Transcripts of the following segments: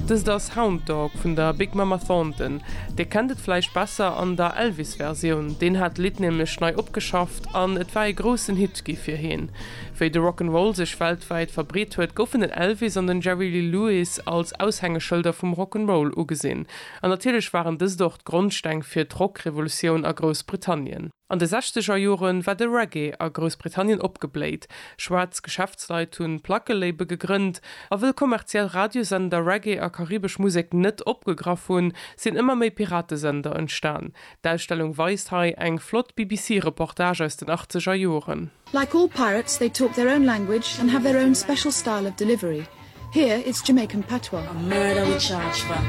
Dëst ass Hound Dog vun der Big Mama Thornton. Dir kennt et vläicht besser an der Elvis-Versioun, deen hat d'Lidd nämlech nei opgeschafft an et war ee groussen Hit gi fir heen. Wéi de Rock 'n' Roll sech weltwäit verbreet huet, goufen den Elvis an den Jerry Lee Lewis als Aushängeschëlder vum Rock 'n' Roll ugesinn. An natierlech waren dëst och d'Grondsteng fir d'Rock-Revolutioun a Groussbritannien. An de sechzeger Jore war de Reggae a Groussbritannien opgebléit. Schwaarz Geschäftsleit hunn d'Plackelabel gegrënnt. A wëll kommerziell Radiosender Reggae a karibesch Musek net opgegraff hunn, sinn ëmmer méi Piratesender entstan. D'Ausstellung weist hei eng flott BBC-Reportage aus den achtzeger Joren. Like all pirates they talk their own language and have their own special style of delivery. Here it's Jamaican patois. A murder we charge for.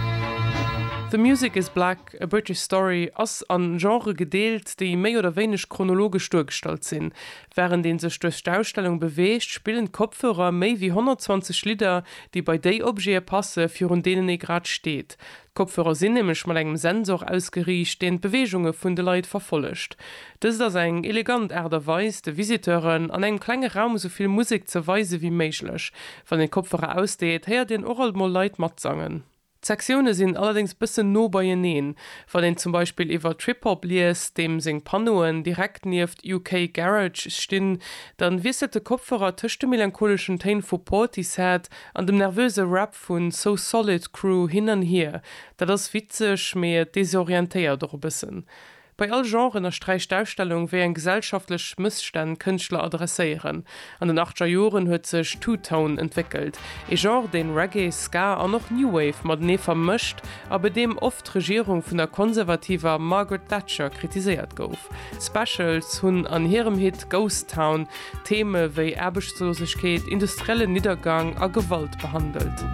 The Music Is Black, A British Story ass a Genrë gedeelt, déi méi oder wéineg chronologesch duergestallt sinn. Wärend ee sech duerch d'Ausstellung beweegt, spillen d'Kopfhörer méi wéi 120 Lidder, déi bei déi Objete passen, virun deenen ee grad steet. D'Kopfhörer sinn nämlech mat engem Sensor ausgeriicht, deen d'Beweegunge vun de Leit verfollegt. Dëst ass eng elegant Aart a Weis, de Visiteuren an engem klenge Raum esou vill Musek ze weise wéi méiglech. Wann een d'Kopfhörer ausdeet, héiert een och alt mol Leit matsangen. D'Sektioune sinn allerdéngs bëssen no beieneen. Wann een zum Beispill iwwer Trip-Hop liest, deem seng Panneauen direkt nieft UK Garage stinn, dann wiesselt de Kopfhörer tëscht de melancholeschen Téin vu Portishead an dem nervöse Rap Vu So Solid Crew hin an hier, dat ass witzeg, mee et desorientéiert och e bëssen. Bei all Genre ënnersträicht d'Ausstellung, wéi eng gesellschaftlech Mësstänn d'Kënschtler adresséieren. An den achtger Joren huet sech Two Tone entwéckelt, ee Genre, deen Reggae, Ska an och New Wave matenee vermëscht a bei deem oft d'Regierung vun der konservativer Margaret Thatcher kritiséiert gouf. D'Specials hunn an hirem Hit Ghost Town Theeme wéi Aarbechtslosegkeet, industriellen Niddergang a Gewalt behandelt.